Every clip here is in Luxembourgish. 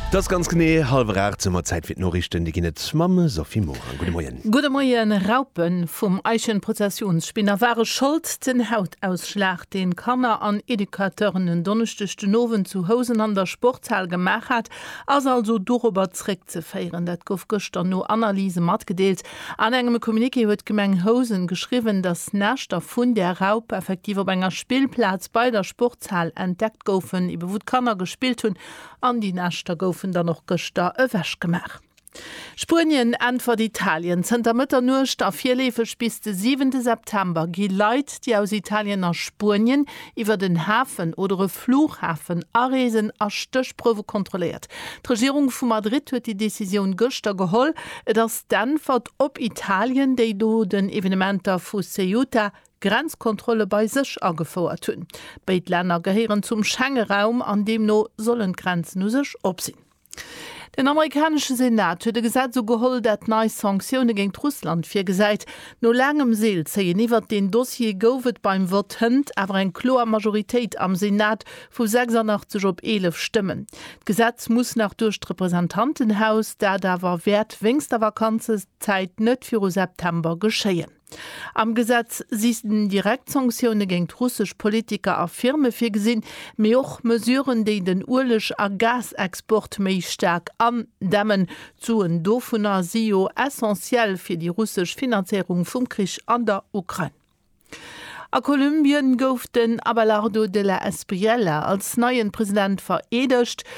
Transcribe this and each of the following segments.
't ass ganz genee halwer 8 Sou mer Zäit fir d'Noriichten. Déi ginn et mam Sophie Morang. Gudde Moien. Gudde Moien. Raupen vum Eichenprozessionsspinner ware Schold. Den Hautausschlag, deen Kanner an Educateuren en Donneschdeg den Owend zu Housen an der Sportshal gemaach hat, ass also dorobber zréckzeféieren. Dat gouf gëschter no Analyse matgedeelt. An engem Communiqué huet d'Gemeng Housen geschriwwen, dass d'Näschter vun där Raup effektiv op enger Spillplaz bei der Sportshal Zahl entdeckt goufen, ebe wou d'Kanner gespillt hunn, an déi Näschter goufen dann och gëschter ewechgemaach. Spuenien äntwert Italien, Zënter Mëtternuecht a virleefeg bis de 7 September gi Leit, déi aus Italien a Spuenien iwwert en Hafen oder e Flughafen areesen, a Stéchprouwe kontrolléiert. D'Regierung vu Madrid huet déi Decisioun gëschter geholl. Et ass d'Äntwert op Italien, déi no den Evenementer vu Ceuta Grenzkontrolle bei sech agefouert hunn. Béid Länner gehéieren zum Schengeraum an deemno sollen d'Grenzen u sech op sinn. Den amerikanesche Senat huet e Gesetz ugeholl, dat nei Sanktioune géint Russland virgesäit. No laangem Seelzéien iwwert deen Dossier gouf et beim Vott hënt awer eng kloer Majoritéit am Senat vu 86 op 11 Stëmmen. D'Gesetz muss nach duerch d'Representantenhaus, dat awer wäert wéinst der Vakanzenzäit net viru September geschéien. Am Gesetz si direkt Sanktioune géint russesch Politiker a Firme virgesinn, mee och Mesuren, déi den Ueleg a Gasexport méi staark andämmen. D'Suen dovunner si jo essentiell fir déi russesch Finanzéierung vum Krich an der Ukrain. A Kolumbien gouf den Abelardo de la Espriella als neien President vereedegt.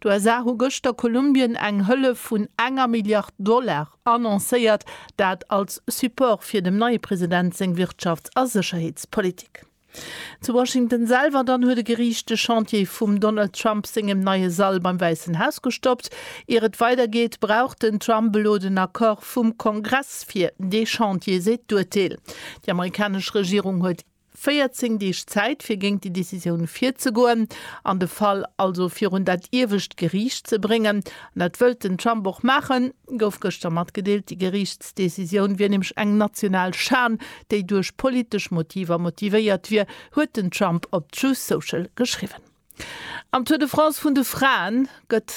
D'USA hu gëschter Kolumbien eng Hëllef vun enger Milliard Dollar annoncéiert, dat als Support fir dem neie President seng Wirtschafts a Sécherheetspolitik. Zu Washington selwer dann huet e Geriicht de Chantier vum Donald Trump sengem neie Sall beim Wäissen Haus gestoppt. Ier et weidergeet, brauch den Trump elo den Accord vum Kongress fir dee Chantier, seet d'Urteel. Déi amerikanesch Regierung huet. 14 Deeg Zäit, fir géint déi Decisioun virzegoen an de Fall also virun dat iewescht Geriicht ze bréngen. An dat wëllt den Trump och maachen, gouf gëschter matgedeelt. Déi Geriichtsdecisioun wier nämlech eng national Schan, déi duerch politesch Motiver motivéiert wier, huet den Trump op Truth Social geschriwwen. Am Tour de France vun de Fraen gëtt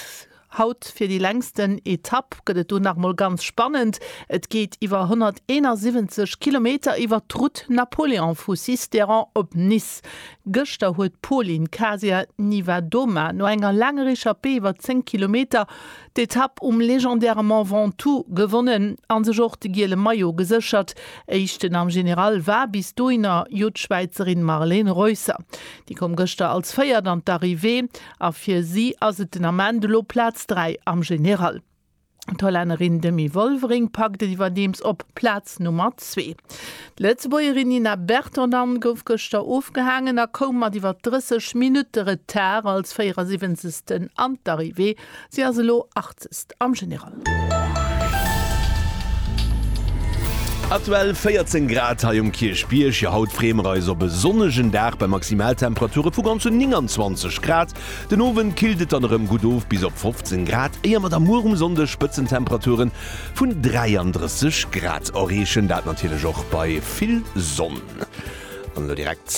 haut fir déi längsten Etapp gëtt et do nach mol ganz spannend. Et geet iwwer 171 Kilometer iwwert d'Route Napoléon vu Sisteron op Nice. Gëschter huet d'Pauline Kasia Niewiadoma no enger laanger Echappée iwwer 10 Kilometer d'Etapp um legendäre Mont Ventoux gewonnen a sech och de giele Maillot geséchert. Éischten am General war bis dohinner jo d'Schwäizerin Marlen Reusser. Déi koum gëschter als Véiert an d'Arrivée a fir si ass et den Ament elo Plaz 3 am General. D'Hollännerin Demi Wolvering packt et iwwerdeems op Plaz Nummer 2. D'Lëtzebuergerin Nina Bertondand gouf gëschter ofgehaangen a koum mat iwwer 30 Minutte Retard als 74. an d'Arrivée. Si ass elo Artist am General. Aktuell 14 Grad hei um Kierchbierg. Jo haut freeë mer eis op e sonnegen Dag bei Maximaltemperature vu ganzen 29 Grad. Den Owend killt et dann erëm gutt of bis op 15 Grad, éier mer da muer um Sonnde Spëtzentemperature vun 33 Grad erreechen. Dat natierlech och bei vill Sonn. An elo direkt.